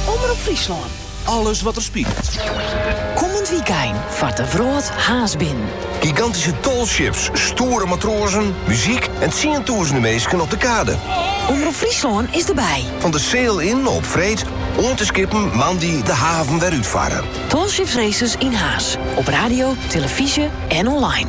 Omrop Fryslân, alles wat der spilet. Kommend wykein fart de wrâld Harns binnen. Gigantyske tall ships, stoere matroazen, muzyk en tsientûzenen minsken op de kade. Omrop Fryslân is derby. Fan de Sail In op freed oant de skippen moandei de haven wer útfarre. Tall Ships Races yn Harns, op radio, telefyzje en online.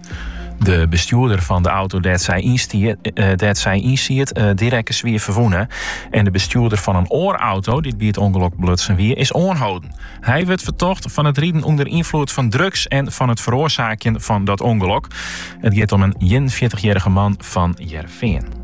De bestjoerder fan de auto dêr't sy eh, ynsiet, eh, dy rekke swier ferwûne. En de bestjoerder fan in oar auto, dy't by it ûngelok belutsen wie, is oanholden. Hy wurdt fertocht fan it riden ûnder ynfloed fan drugs en fan it feroarsaakjen fan dat ûngelok. It giet om in ienenfjirtichjierrige man fan Hearrenfean.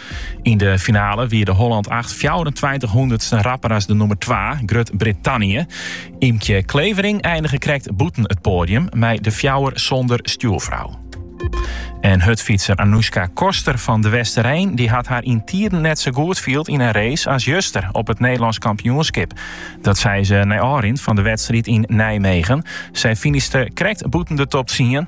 Yn de finale wie de Holland 8 24 hûndertsten rapper as de nûmer 2, Grut Brittannië. Ymkje Clevering einige krekt bûten it poadium mei de fjouwer sonder stjoerfrou. En hurdfytser Anouska Koster fan de Westereen dy hat har yn tiden net sa goed field yn in race as juster op it Nederlânsk kampioenskip. Dat sei se nei ôfrin fan de wedstriid yn Nijmegen. Sy finishte krekt bûten de top 10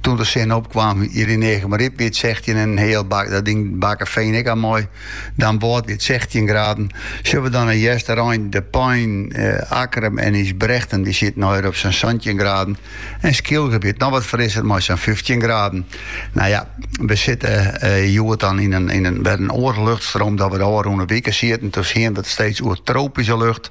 Toen de sinne opkaam, hjir yn Eagmaryp wie it sechtjin en in heal bak, dat ding Bakkefean ek al mei. Damwâld wie it sechtjin graden. Sjogge we dan yn Easterein, De Pein, Akkrum en Ysbrechtum dy sieten al ier op sa'n santjin graden en Skylge wie it noch wat frisser mei sa'n fyftjin graden. Nou ja, we sitte hjoed dan yn in wer in oare luchtstroom dat we de ôfrûne wike sieten. Toen hiene we it steeds oer tropyske lucht.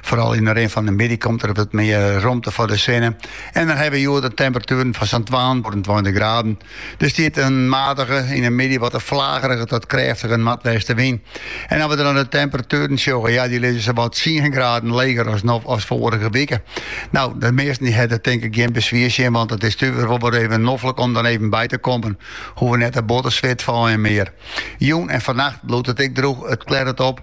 Foaral yn de rin fan de middei komt der wat mear romte foar de sinne en dan hawwe we hjoed temperatueren fan sa'n twantweintich graden. Der stiet in matige, yn de middei wat in flagerige tot krêftige noardwestewyn. En as we dan de temperatueren sjogge, ja, dy lizze sawat tsien graden leger as no as foarige wike. No, de measten dy hawwe der tink ik gjin beswier tsjin, want it is toch ek wol wer even noflik om dan even by te kommen. Hoege we net te bot te switfeien mear. Jûn en fannacht bliuwt it ek drûch, it klearret op.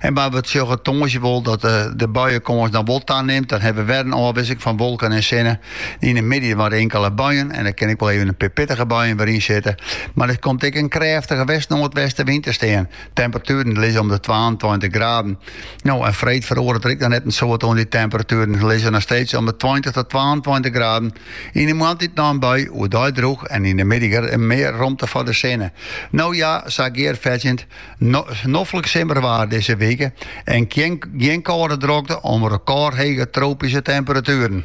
En mar we sjogge tongersdei wol dat de buienkâns dan wol tanimt. Dan hawwe we wer in ôfwisseling fan wolken en sinne. Yn de middei mar inkele buien en der kin ek wol even in pear pittige buien wer yn sitte. Mar der komt ek in krêftige west-noardwestenwyn te stean. Temperatueren lizze om de twaentweintich graden. No, en freed feroaret der ek noch net in soad oan dy temperatueren. Se lizze noch steeds om de tweintich tot twaentweintich graden. Yn de moarntiid noch in bui, oerdei drûch en yn de middei mear romte foar de sinne. No ja, sa gearfetsjend. Noflik simmerwaard dizze wike en gjin kâlde drokte om rekôrhege tropyske temperatueren.